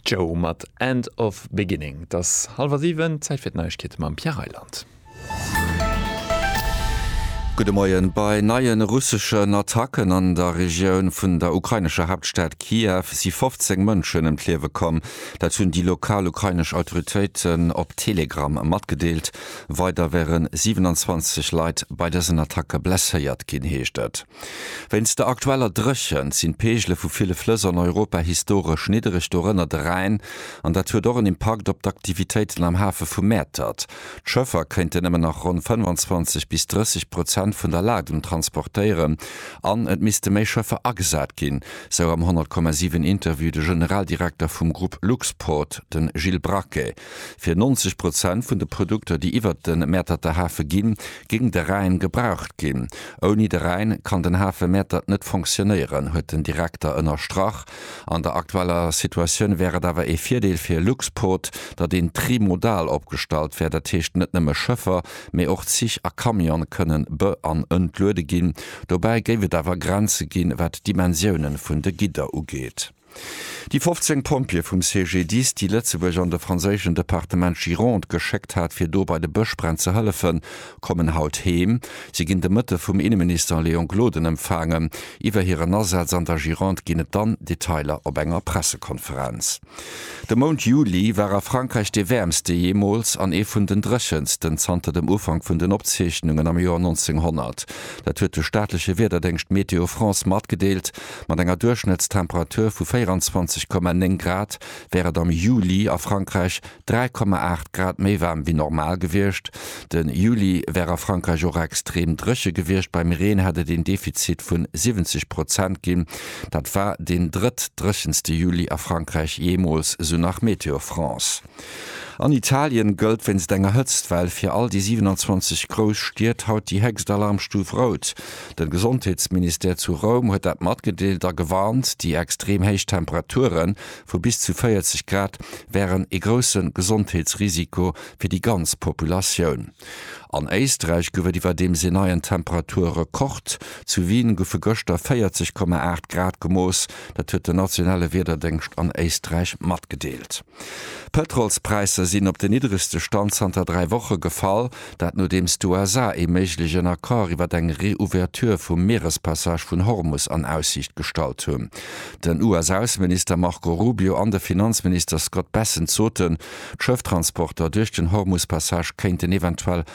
Joe mat End of Beginning. Et ass hallwer siwen, Zäit fir d'Neiegkeete mam Pierre Reyland. Gudde Moien. Bei neie russeschen Attacken an der Regioun vun der ukrainescher Haaptstad Kiew si 15 Mënschen ëm d'Liewe komm. Dat hunn déi lokal ukrainesch Autoritéiten op Telegram matgedeelt. Weider wäre 27 Leit bei dësen Attacke blesséiert ginn, heescht et. Wéinst der aktueller Dréchent sinn d'Peegele vu ville Flëss an Europa historesch niddereg, dorënner de Rhäin, an dat huet och en Impakt op d'Aktivitéiten am Hafe vu Mäertert. D'Schëffer kéinten nëmmen nach ronn 25 bis 30 Prozent vun der Ladung transportéieren an et misste méi Schëffer agesat ginn, sou am 100,7 Interview de Generaldirekter vum Grupp Luxport, de Gilles Braquet. Fir 90 Prozent vun de Produkter, déi iwwert de Mäerterter Hafe ginn, géing de Rhäin gebraucht ginn. Ouni de Rhäin kann den Hafe Mäertert net fonctionnéieren, huet den Direkter ënnerstrach. An der aktueller Situatioun wär et awer ee Virdeel fir Luxport, datt een trimodal opgestallt wär, dat heescht net nëmme Schëffer, mee och Zich a Camione kënnen be an entluede ginn. Dobäi géif et awer Grenze ginn, wat d'Dimensioune vun de Gidder ugeet. Déi 15 Pompjeeë vum CGDIS, déi Lëtzebuerg an de franséischen Departement Gironde geschéckt hat, fir do bei de Bëschbränn ze hëllefen, kommen haut heem. Si ginn de Mëtte vum Inneminister Léon Gloden empfaangen. Iwwer hiren Asaz an der Gironde ginn et dann Detailer op enger Pressekonferenz. De Mount Juli war a Frankräich dee wäermste jeemools an ee vun den dréchensten zanter dem Ufank vun den Opzeechnungen am Joer 1900. Dat huet de staatleche Wiederdéngscht Météo France matgedeelt. Mat enger Duerchschnëttstemperatur vu 24,9 Grad wär et am Juli a Frankräich 3,8 Grad méi waarm wéi normal gewiescht. De Juli wär a Frankräich och extrem dréche gewiescht, beim Reen hätt et een Defizit vun 70 Prozent ginn. Dat war deen drëttdréchenste Juli a Frankräich jeemools, esou nach Météo France. An Italien gëllt wéinst enger Hëtztwell fir all déi 27 grouss Stied haut déi héchst Alarmstuf Rout. De Gesondheetsministère zu Roum huet dat matgedeelt a gewarnt, déi extrem héich Temperature vu bis zu 40 Grad wären ee grousse Gesondheetsrisiko fir déi ganz Populatioun. An Éisträich gouf et iwwerdeems een neien Temperaturrekord, Zu Wien goufe gëschter 40,8 Grad gemooss, dat huet den nationale Wiederdéngscht an Éisträich matgedeelt. D'Pëtrolspräisser sinn op den niddregste Stand zanter dräi Woche gefall, dat nodeems d'USA ee méiglechen Accord iwwer eng Reouverture vum Mierespassage vun Hormus an Aussiicht gestallt hunn. Den US-Ausseminister Marco Rubio an de Finanzminister Scott Bessent soten, d'Schëfftransporter duerch den Hormuspassage kéinten eventuell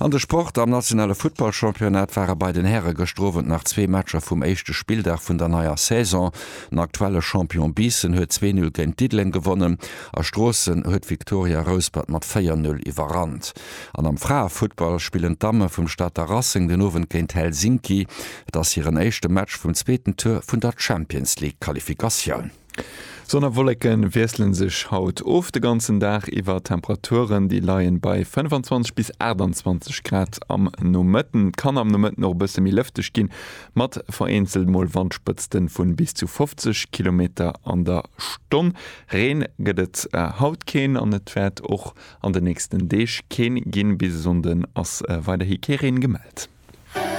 An de Sport, Am nationale Futtballchampionnat ware bei den Häre gëschter Owend nach zwee Matcher vum éischte Spilldag vun der neier Saison. Den aktuelle Champion Biissen huet zwee Null géint Diddeleng gewonnen a Stroossen huet d'Victoria Rouspert mat véier Null iwwerrannt. An am Fraefuttball spillen d'Damme vum Stater Racing den Owend géint Helsinki. Et ass hiren éischte Match vum zweeten Tour vun der Champions League-Qualifikatioun. Sonn a Wolleke wiessle sech haut of, de ganzen Dag iwwer. D'Temperaturen, déi leie bei 25 bis 28 Grad am Nomëtten. Et kann am Nomëtten och e bësse méi lëfteg ginn, mat vereenzelt mol Wandspëtzte vu bis zu 50 Kilometer an der Stonn. Reen gëtt et haut keen an et wäert och an de nächsten Deeg keen ginn. Bis e Sonnde ass weiderhi kee Reen gemellt.